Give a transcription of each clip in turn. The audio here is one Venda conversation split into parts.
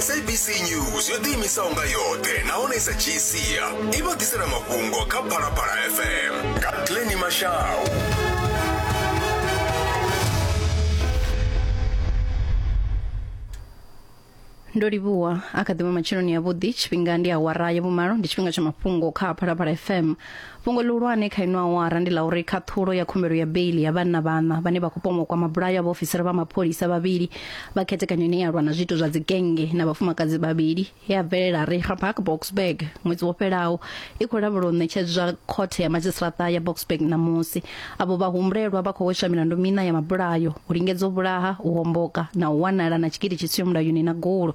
sabc news yo ḓiimisaho nga yoṱhe nahone i sa dzhii sia i vha ḓisela mafhungo kha phalaphala fm nga tleni mashau ndo livhuwa a kha ḓivha matsheloni yavhuḓi tshifhinga ndi awara ya vhumalo ndi tshifhinga tsha mafhungo kha phalaphala fm Fhungo ḽihulwane kha ino awara ndi ḽa uri khaṱhulo ya khumbelo ya beiḽi ya vhanna vhaṋa vhane vha khou pomwa u kwama bulayo ha vhaofisiri vha mapholisa vhavhili vha khethekanyo ine ya lwa na zwiito zwa dzigennge na vhafumakadzi vhavhili ye ya bvelela Reichenbach Boksburg ṅwedzi wo fhelaho i khou lavhelwa u ṋetshedzwa khothe ya madzhisiṱaraṱa ya Boksburg ṋamusi. Avho vhahumbulelwa vha khou hweswa milandu miṋa ya mabulayo, u lingedza u vhulaha, u homboka na u wanala na tshigidi tshi siho mulayoni na gulo.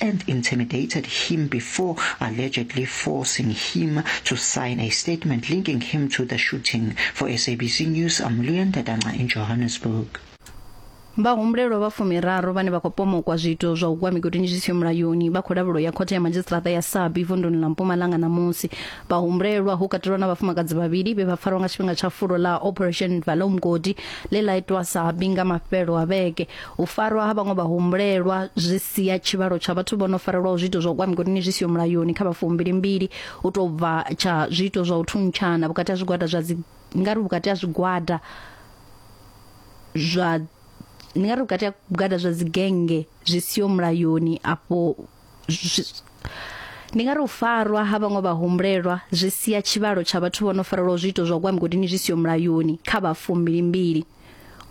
and intimidated him before allegedly forcing him to sign a statement linking him to the shooting. For SABC News, I'm Leon Dadanga in Johannesburg. vhahumbulelwa vha fumiraru vhane vha khou pomokwa zwiito zwa u gwa migodini zwi siho mulayoni vha khou lavhulo ya khothe ya madzhisiṱiraṱa ya sabi vunduni ḽa mpumalanga ṋamusi vhahumbulelwa hu katelwa na vhafumakadzi vhavhili vhe vha farwa nga tshifhinga tsha fulo ḽa operation valomgodi ḽe ḽa itwa sabi nga mafhelo a vhege U farwa ha vhaṅwe vhahumbulelwa zwi sia tshivhalo tsha vhathu vho no farelwaho zwiito zwa u kwa migodini zwi siho mulayoni kha vha fumbilimbili u tou bva tsha zwiito zwa u thuntshana vhukati ha zwigwada zwa dzi nga ri vhukati ha zwigwada zwa ndi nga ri vhukati ha vhugada zwa dzigenge zwi siho mulayoni afho ndi nga ri u farwa ha vhaṅwe vhahumbulelwa zwi sia tshivhalo tsha vhathu vho no farelwa zwiito zwa kwa migodini zwi siyo mulayoni kha vha fumbilimbili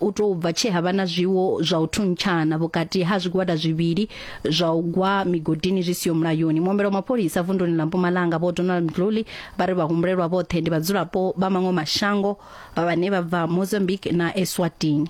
u tou bva tshe ha vha na zwiwo zwa u thuntshana vhukati ha zwigwada zwivhili zwa u gwa migodini zwi siyo mulayoni muombelo mapholisa vunduni ḽa mpumalanga vho donald mdluli vha ri vhahumbulelwa vhoṱhe ndi vhadzulapo vha maṅwe mashango vha vhane vha bva mozambique na eswatini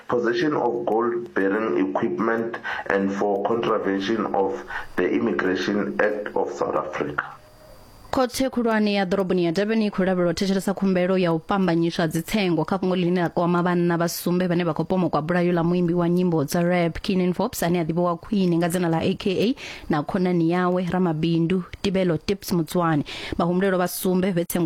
possession of gold-bearing equipment and for contravention of the Immigration Act of South Africa. Khothe khulwane ya ḓoroboni ya Durban i khou lavhelwa u thetshelesa khumbelo ya u pambanyiswa dzitsengo kha fhungo ḽine ḽa kwama vhanna vha sumbe vhane vha khou pomokwa bulayo ḽa muimbi wa nyimbo dza rap Keenan Forbes ane a ḓivhiwa khwine nga dzina ḽa AKA na khonani yawe ramabindu Tibelo Tips Mutswane. Vhahumbulelwa vha sumbe vhe tsengo